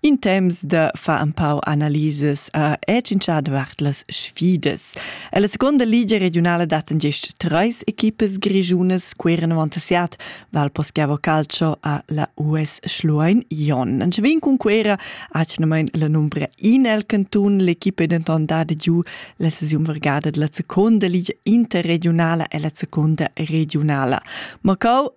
In temps da far un pau analisas a è cincià davart las sfidas. E la seconda ligia regionala daten gist treis equipas grigiunas queran avantassiat Val Poschiavo Calcio a la US Schluein Jon. An vin cun quera acnamain la numbra in el cantun, l'equipa è denton dada giù la sesiun vergada della seconda ligia interregionala e la seconda regionala. Macau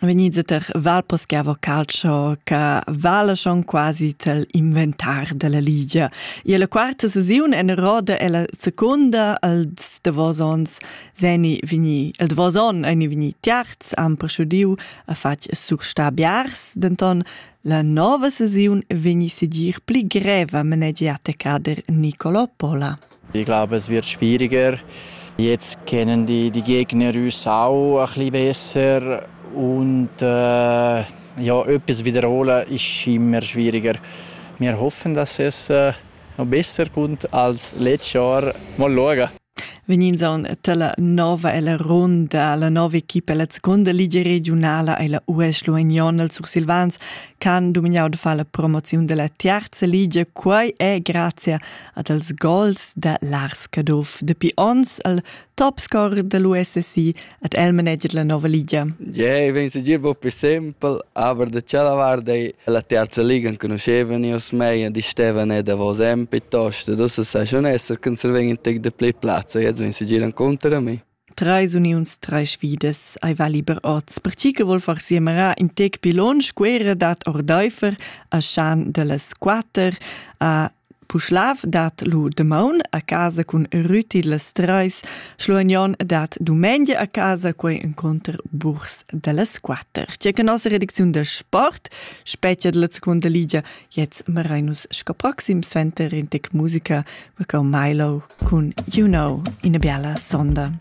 venids ter val poschiavo calcio che vala schon quasi tel inventar della ligia. E la quarta sesiun en roda e la seconda als davosons seni vini el davoson eni vini tiarz am proschudiu a fatg surstabiars denton la nova sesiun veni sedir pli greva menegiata cader Nicolo Pola. Ich glaube, es wird schwieriger. Jetzt kennen die, die Gegner uns auch ein bisschen besser und äh, ja, etwas wiederholen ist immer schwieriger. Wir hoffen, dass es äh, noch besser kommt als letztes Jahr. Mal schauen. Vegnind aunc dalla nova ella ronda, la nova equipa ella seconda ligia regiunala e la US Luignon els Sursilvans ch'han dumignau de far la promoziun della terza ligia. Quei è grazie ad els gols da Lars Caduff. Dapi ons al topscorer dell'USSI ad el manager la nova liga. Yeah, vegn se dir per sempre, aber da cella guarda la terza liga conoscevan io mei e di Stevan e davos en piuttosto, dus sa schon esser, che se vegn in tec de play plazza, jetzt vegn se giran contro a me. Treis uniuns, treis sfidas ei va liber oz. Per chi che vol far siemerar in tec pil lunsch guerra dat ordeifer a Schan dellas quater a Puschlav dat lu demaun a casa cun Rüti las treis, Schluagnon dat dumengia a casa quei incontr Burs dellas quatter. Tge che nossa redacziun da sport, spetga della seconda ligia Jetzt merein nus sco proxim suenter in tec musica per cau Milo cun You Know in a biala sonda.